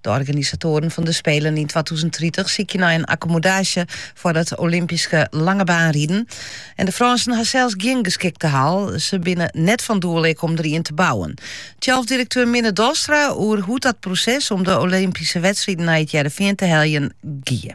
De organisatoaren fan de Spelen yn twatûzen tritich sykje nei in akkomodaasje foar it Olympyske langebaanriden. En de Frânsen ha sels gjin geskikte hal. Se binne net fan doel ek om der ien te bouwen. Thialfdirekteur Minne Dolstra oer hoe't dat proses om de Olympyske wedstriden nei it Hearrenfean te heljen gie.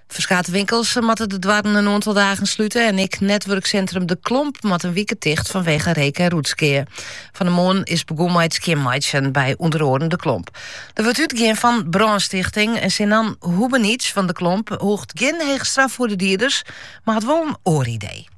Ferskate winkels moatte de doarren in oantal dagen slute en ek netwurksintrum De Klomp moat in wike ticht fanwege reek en roetskea. Fan de moarn is begûn mei it skjinmeitsjen by ûnder oaren De Klomp. Der wurdt útgien fan brânstichting en Sinan Hubenic fan De Klomp hoecht gjin hege straf foar de dieders, mar hat wol in oar idee.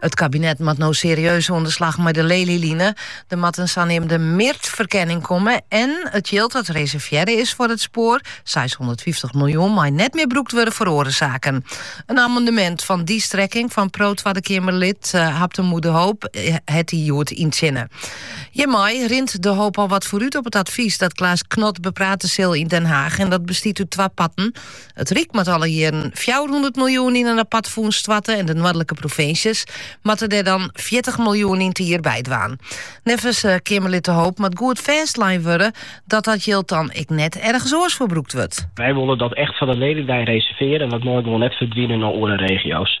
It kabinet moat no serieus oan de slach mei de Lelyline. Der moat in saneamde MIRT-ferkenning komme en it jild dat reservearre is foar it spoar, seishûndertfyftich miljoen, mei net mear brûkt wurde foar oare saken. In amendemint fan dy strekking fan PRO Twadde Keamerlid Habtamu de Hoop hat dy hjoed yntsjinne. Hjirmei rint De Hoop al wat foarút op it advys dat Klaas Knot beprate sil yn Den Haach en dat bestiet út twa parten. It Ryk moat alle jierren fjouwerhûndert miljoen yn in apart fûns stoarte en de noardlike provinsjes moatte dêr dan fjirtich miljoen yn 't jier by dwaan. Neffens Keamerlid De Hoop moat goed fêstlein wurde dat dat jild dan ek net ergens oars foar brûkt wurdt. Wy wolle dat echt foar de Lelyline reservearje en dat mei gewoan net ferdwine nei oare regio's.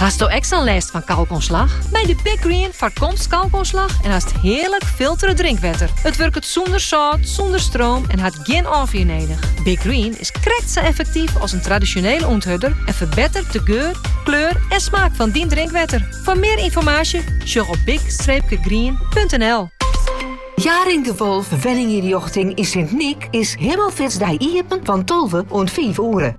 Hasto ek sa'n lêst fan kalkoanslach? Mei de Big Green foarkomst kalkoanslach en hast hearlik filtere drinkwetter. It wurket sûnder sâlt, sûnder stroom en hat gjin ôffier nedich. Big Green is krekt sa effektyf as in tradisjonele ûnthurder en ferbettert de geur, kleur en smaak fan dyn drinkwetter. Foar mear ynformaasje sjoch op big-green.nl. Jaring de Wolff Wenninginrjochting yn Sint Nyk is Himelfeartsdei iepen fan tolve oant fiif oere.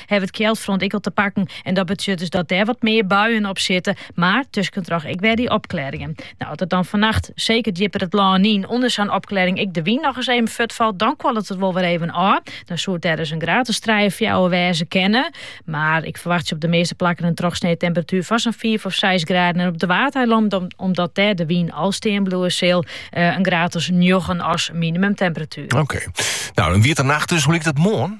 hawwe it kjeldfront ek al te pakken en dat betsjut dus dat dêr wat mear buien op sitte, mar tuskentroch ek wer dy opklearringen. Nou, as it dan fannacht seker djipper it lân yn ûnder sa'n opklearring ek de wyn noch ris even fuortfalt, dan kuollet it wol wer even ôf. Dan soe it der ris in graad as trije fjouwer wêze kinne, mar ik ferwachtsje op de measte plakken in trochsnee temperatuer fan sa'n fiif of seis graden en op de Waadeilannen, omdat dêr de wyn al stean bliuwe sil, eh, in graad as njoggen as minimumtemperatuer. Oké. Nou, dat wie de nacht dus. Hoe liket it moarn?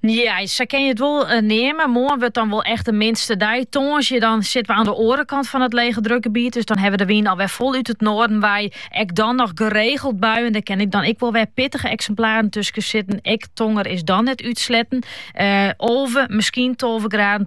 Ja, sa kin je it wol eh, neamen. Moarn wurdt dan wol echt de minste dei. Tongersdei dan sitte we oan de oare kant fan it legedrukgebiet. Dus dan ha we de wyn alwer fol út it noarden wei. Ek dan noch geregeld buien. Dêr kinne ek dan ek wol wer pittige eksimplaren tusken sitte. Ek tonger is dan net útsletten. Uh, eh, olve, misschien tolve graden.